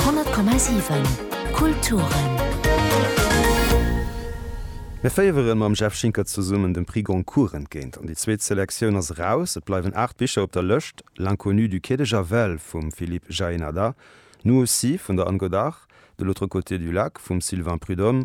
10,7 Kulturen. Mir féiere mam Jeff Schinker zesummen dem Prix Goncourt entgéint an déi zweet Selektioun ass eraus. Et bleiwen aacht Bicher op der Lëscht, L'inconnu du quai de Javel vum Philippe Jaénada, Nous aussi vun der Anne Godart, De l'autre côté du lac vum Sylvain Prud'homme,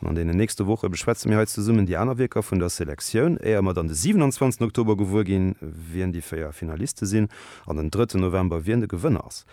An an deenen nächste Woche beschwätze mir hei zesummen déi aner Wierker vun der Selektioun, éier mer dann de 27 Oktober gewuer ginn, wien déi véier Finaliste sinn, an den drëtten November, wien de Gewënner ass.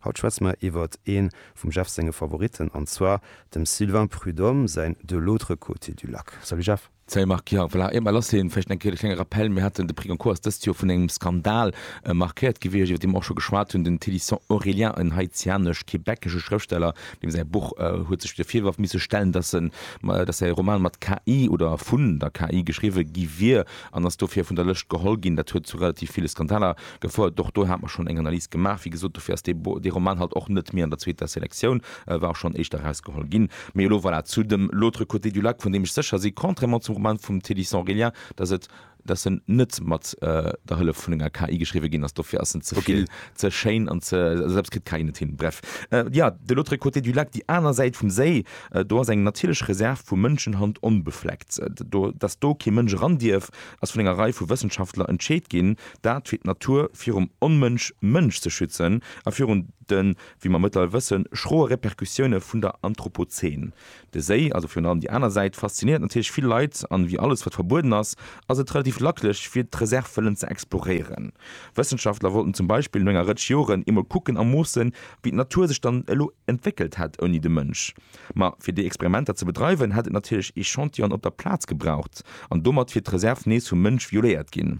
Haut schwätze mer iwwert ee vum Jeff senge Favoritten, an zwar dem Sylvain Prud'homme säin De l'autre côté du lac. Salut Jeff. Salut Marc, jo voilà, eemol ass hien, vläicht eng Kéier de klenge Rappel, mir haten, de Prix Goncourt ass dëst Joer vun engem Skandal markéiert gewiescht, iwwert dee mer och scho geschwat hunn, den Thélisson Aurélien, en haitianesch-québecesche Schrëftsteller, Deem säi Buch huet sech de Virwërf misse stellen, datt en, datt säi Roman mat KI oder vun der KI geschriwwe gi wier an ass dofir vun der Lëscht geholl ginn. Dat huet zu relativ ville Skandaler gefouert. Och do hat mer schonn eng Analys gemaach. Wéi gesot, dofir ass dee Roman halt och net méi an der zweeter Selektioun, e war och schonn éischter erausgeholl ginn. Mee elo, voilà, zu dem L'autre côté du lac, vun deem ech sécher si, contrairement zum Roman vum Théddy Sans Relien, datt et, dass en net mat der Hëllef vun enger KI geschriwwe ginn ass, dofir ass en ze vill, ze schéin an ze, also dat kritt d'KI net hin. Bref, jo, de l'autre côté du lac, déi aner Säit vum Séi, do ass eng natierlech Reserv vu Mënschenhand onbefleckt. Do, dass do kee Mënsch eran dierf, ass vun enger Rei vu Wëssenschaftler entscheet ginn, dat fir d'Natur virum Onmënsch Mënsch ze schützen a virun de, wéi mer mëttlerweil wëssen, schroe Repercussioune vun der Anthropozän. De Séi, also virun allem déi aner Säit, faszinéiert natierlech vill Leit an ewéi alles wat verbueden ass, ass et relativ lacklech fir d'Reserv wëllen ze exploréieren. Wëssenschaftler wollten zum Beispill no enger Rëtsch Joren eemol kucken a moossen, wéi d'Natur sech dann elo entwéckelt hätt ouni de Mënsch. Ma fir déi Experimenter ze bedreiwen, hätt et natierlech Echantillonen op der Plaz gebraucht an domat wier d'Reserv nees vum Mënsch violéiert ginn.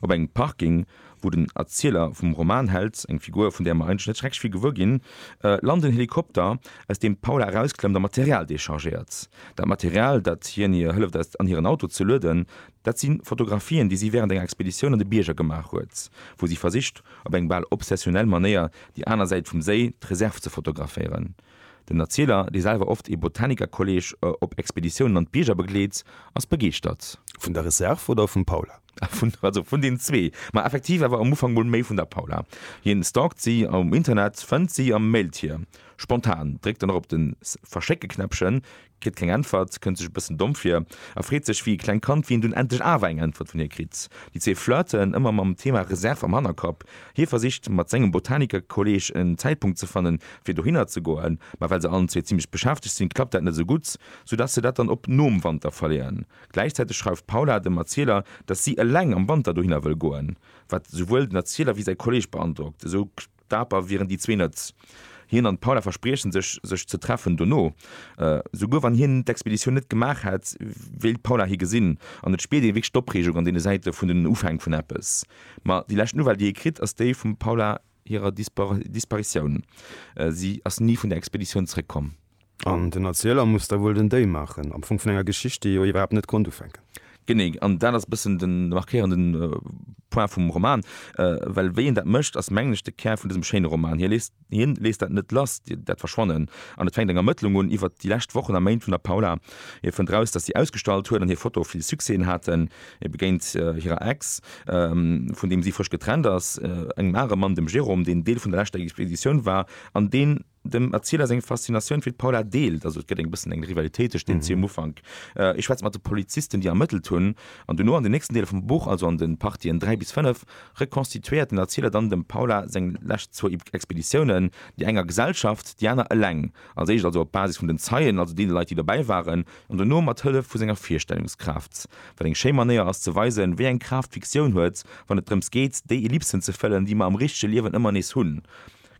Op engem Parking, wou den Erzieler vum Roman hält, eng Figur, vun där mer eigentlech net schrecklech vill gewuer ginn, lant en Helikopter, aus deem d'Paula erausklemmt a Material dechargéiert. Dat Material, dat hien hir hëlleft aus an hiren Auto ze lueden, dat si Fotografien, déi si wärend enger Expeditioun an de Bierger gemaach huet, wou si versicht, op eng bal obsessionnel Manéier déi aner Säit vum Séi, d'Reserv, ze fotograféieren. Den Erzieler, dee selwer oft ee Botanikerkolleeg op Expeditiounen an d'Bierger begleet, ass begeeschtert. Vun der Reserve oder vum Paula? Also vun den zwee, ma effektiv awer am Ufank mol méi vun der Paula. Hien stalkt si um Internet, fënnt si a mailt hir. Spontan dréckt en och op de Verschécke-Knäppchen, kritt keng Äntwert, kënnt sech e bëssen domm vir a freet sech wéi e klengt Kand, wéi en dunn endlech awer eng Äntwert vun hir kritt. Déi zwee flirten, ëmmer mam Thema Reserve am Hannerkapp. Hie versicht mat sengem Botanikerkolleeg en Zäitpunkt ze fannen, fir dohinner ze goen, ma well se allen zwee zimmlech beschäftegt sinn, klappt dat net esou gutt, sou dass se dat dann op nom Wanter verleeën. Gläichzäiteg schreift d'Paula dem Erzieler, dass si eleng am Wanter dohinner wëll goen, wat esouwuel den Erzieler wéi säi Kolleeg beandrockt. Esou. Daper wieren déi zwee net. Hien an d'Paula verspriechen sech, sech ze treffen dono. Souguer wann hien d'Expeditioun net gemaach hätt, wéilt d'Paula hie gesinn. An et spiert ee wierklech d'Opreegung an deene Säite vun den Ufäng vun eppes. Ma déi lescht Nouvelle déi ee kritt, ass déi vum Paula hirer Disparitioun. Si ass ni vun der Expeditioun zeréckkomm. An den Erzieler muss da wuel den Déi maachen, am Fong vun enger Geschicht, déi jo iwwerhaapt net konnt ufänken. Genee, an dat ass e bëssen de markéierende Point vum Roman, well wéi een dat mécht, ass mengen ech de Kär vun dësem schéine Roman. Hien léisst dat net lass, dat Verschwannen, an et fänkt eng Ermëttlung un iwwert déi lescht Wochen a Méint vun der Paula. Hie fënnt eraus, datt si ausgestallt huet an hir Fotoe vill Succèsen haten. Hie begéint hirer Ex, vun deem si frësch getrennt ass, engem anere Mann, dem Jérôme, deen Deel vun der leschter Expeditioun war an deen, Dem Erzieler seng Faszinatioun fir d'Paula deelt, also et gëtt eng bëssen eng Rivalitéit tëscht deenen zwee um Ufank. Ee schwätzt mat de Polizisten, déi ermëttelt hunn, an dono an den nächsten Deeler vum Buch, also an de Partien 3 bis 5, rekonstituéiert den Erzieler dann dem Paula seng lescht zwou Expeditiounen, déi eng a Gesellschaft, déi aner eleng, als éischt also op Basis vun den Zeien, also deene Leit, déi dobäi waren, an dono mat Hëllef vu senger Virstellungskraaft, wat eng schéi Manéier ass, ze weisen, wéi eng Kraaft d'Fiktioun huet, wann et drëms geet, déi Ellipsen ze fëllen, déi mer am richtege Liewen ëmmer nees hunn.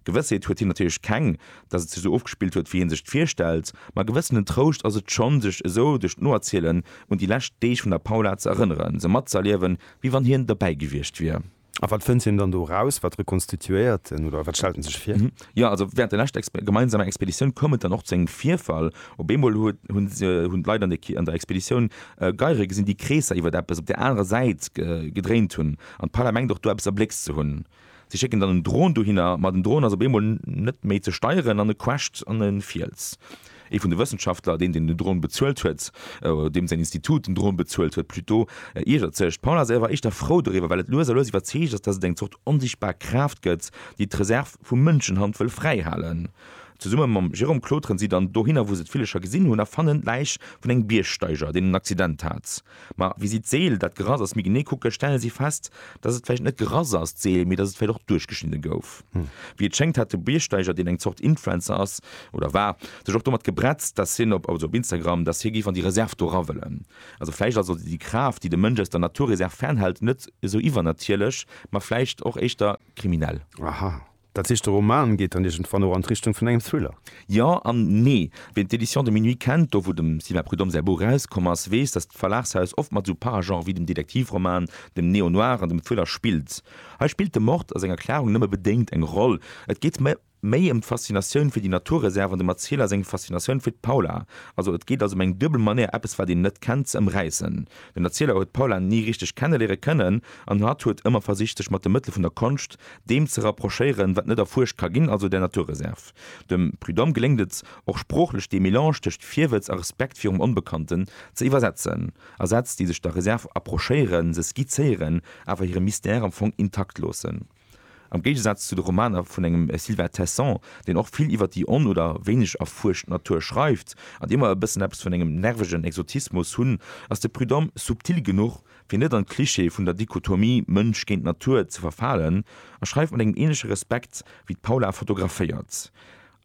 Gewëssheet huet hien natierlech keng, datt et sech esou ofgespillt huet, wéi hie sech et virstellt, ma e gewëssenen Trouscht ass et schonn, sech esou duerch d'Noerzielen un déi lescht Deeg vun der Paula ze erënneren, se matzëerliewen, wéi wann hien derbäi gewiescht wier. A wat fënnt hien dann do eraus? Wat rekonstituéiert en oder wat stellt en sech vir? Jo, also wärend der leschter gemeinsamer Expeditioun koum et dann och zu engem Virfall. Op eemol hunn d'Leit an der Expeditioun Geiere gesinn, déi Kreesser iwwer eppes op där anerer Säit gedréint hunn, an d'Paula mengt och do eppes erbléckst ze hunn. Si schécken dann en Dron dohinner, ma den Dron ass op eemol net méi ze steieren an e crasht an e Fiels. Ee vun de Wëssenschaftler, deen den Dron bezuelt huet, oder deem säin Institut den Dron bezuelt huet plutôt, iergert sech. D'Paula ass awer éischter frou doriwwer, well et lues a lues iwwerzeegt ass, dass et eng Zort onsichtbar Kraaft gëtt, déi d'Reserv vu Mënschenhand wëll fräihalen. Zesumme mam Jérôme klauteren si dann dohinner, wou se d'Villecher gesinn hunn, a fannen d'Läich vun engem Biergsteiger, deen en Accident hat. Ma wéi si d'Seel, dat Grass ass, méi genee kucken, stelle si fest, dass et vläicht net d'Grass ass, d'Seel, mee dass et vläicht och duerchgeschnidde gouf. Wéi et schéngt, hat de Biergsteiger, deen eng Zort Influencer ass, oder war, sech och domat gebretzt, dass hien op, also op Instagram, dass hie géif an déi Reserv do era wëllen. Also vläicht ass also déi Kraaft, déi de Mënsch aus der Naturreserv fernhält, net esou iwwernatierlech, ma vläicht och éischter kriminell. Aha. Dat heescht, de Roman geet dann iergendwann och an d'Richtung vun engem Thriller? Jo an nee. Ween d'Éditions de minuit kennt, do wou dem Sylvain Prud'homme säi Buch erauskomm ass, weess, datt d'Verlagshaus oft mat esou Paragenrë wéi dem Detektivroman, dem Néo-noir an dem Thriller spillt. Hei spillt de Mord a senger Klarung nëmme bedéngt eng Roll. Et geet méi ëm d'Faszinatioun fir déi Naturreserv an dem Erzieler seng Faszinatioun fir d'Paula. Also et geet als ëm eng duebel Manéier eppes wat een net kennt ze ëmräissen. Den Erzieler huet d'Paula ni richteg kenneliere kënnen an hatt huet ëmmer versicht sech mat de Mëttele vun der Konscht, deem ze rapprochéieren, wat net erfuerscht ka ginn, also der Naturreserve. Dem Prud'homme geléngt et och sproochlech dee Melange tëscht Virwëtz a Respekt virum Onbekannten ze iwwersetzen, a Sätz, déi sech der Reserve approchéieren, se skizzéieren, awer hire Mystère am Fong intakt loossen. Am Géigesaz zu de Romaner vun engem Sylvain Tesson, deen och vill iwwer déi on oder wéineg erfuerscht Natur schreift, an déi ëmmer e bëssen eppes vun engem nervegen Exotismus hunn, ass de Prud'homme subtil genuch, Fir net an d'Clichée vun der Dichotomie Mënsch géint Natur ze verfalen, a schreift mat engem ähnleche Respekt, wéi d'Paula fotograféiert.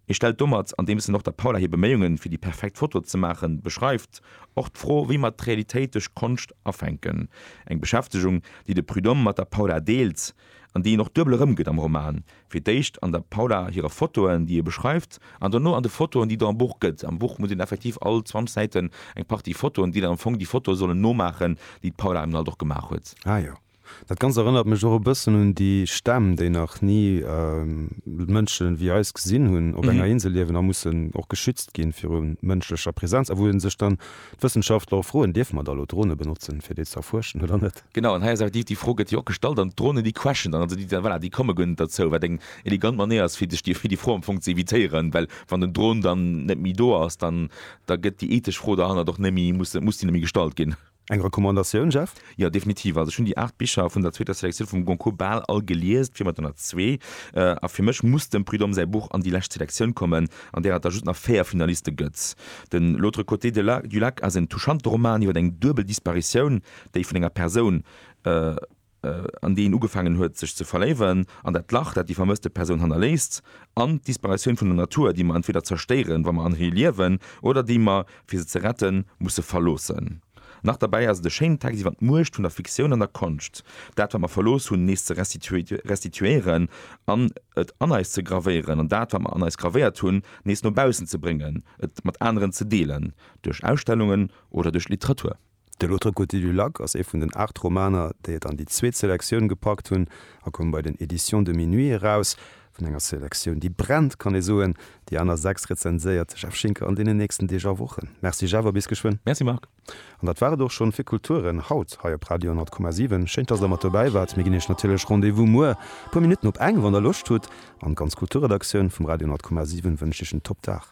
Et stellt domat, andeems en och der Paula hir Beméiungen, fir déi perfekt Foto ze maachen, beschreift, och d'Fro, wéi mer d'Realitéit duerch Konscht afänken. Eng Beschäftegung, déi de Prud'homme mat der Paula deelt. an déi een och duebel erëmgëtt am Roman, fir d'éischt an der Paula hire Fotoen, déi e beschreift, an dono an de Fotoen, déi do am Buch gëtt. Am Buch muss een effektiv all 20 Säiten eng Partie Fotoen, déi dann am Fong déi Fotoe sollen nomaachen, déi d'Paula eben alt och gemaach huet. Ah jo, dat Ganzt erënnert mech och e bëssen un déi Stämm, déi nach ni Mënsche wéi eis gesinn hunn, op enger Insel liewen a mussen och geschützt ginn viru mënschlecher Presenz, a wou ee sech dann, d'Wëssenschaftler, och froen, Dierfe mer da elo Drone benotzen, fir déi ze erfuerschen oder net? Genau, an hei ass awer déi, déi Fro gëtt jo och gestallt an d'Dronen, déi quaschen dann, also déi, voilà, déi komme guer net derzou, wat eng elegant Manéier ass, fir sech déi Fro am Fong ze evitéieren, well wann den Dron dann net méi do ass, dann, da gëtt déi ethesch Fro derhannert och net méi, muss, muss déi net méi gestallt ginn. Eng Recommandatioun, Jeff? Jo, definitiv. Also ech hunn déi aacht Bicher vun der zweeter Selektioun vum Goncourt bal all gelies, d'Firma hat der nach zwee, a fir mech muss dem Prud'homme säi Buch an déi lescht Selektioun kommen, an där et da just nach véier Finaliste gëtt. Den L'autre côté de la, du lac ass en touchante Roman iwwer eng duebel Disparitioun, déi vun enger Persoun, an déi een ugefaangen huet sech ze verléiwen, an dat Lach, dat déi vermësste Persoun hannerléisst, an d'Disparatioun vun der Natur, déi mer entweder zerstéieren, wa mer an hir liewen, oder déi mer, fir se ze retten, musse verloossen. Nach derbäi ass et e schéinen Text iwwer d'Muecht vun der Fiktioun an der Konscht, dat, wat mer verlooss hunn, nees ze restituéieren an et an eis ze gravéieren, an dat, wat mer an eis gravéiert hunn, nees no baussen ze bréngen, et mat aneren ze deelen, duerch Ausstellungen oder duerch Literatur. De L'autre côté du lac ass ee vun den aacht Romaner, déi et an déi zweet Selektioun gepackt hunn a koum bei den Éditions de Minuit eraus. Vun enger Selektioun, déi brennt, kann ee soen, déi aner sechs rezenséiert de Jeff Schinker an deenen nächsten Deeg a Wochen. Merci Jeff a bis geschwënn. Merci Marc. An dat war et och schonn fir Kulturen haut hei op Radio 100,7. Schéin, dass der mat dobäi waart. Mir ginn iech natierlech Rendez-vous muer puer Minutten op eng, wann der Loscht hutt. An d'ganz Kulturredaktioun vum Radio 100,7 wënscht iech en Top Dag.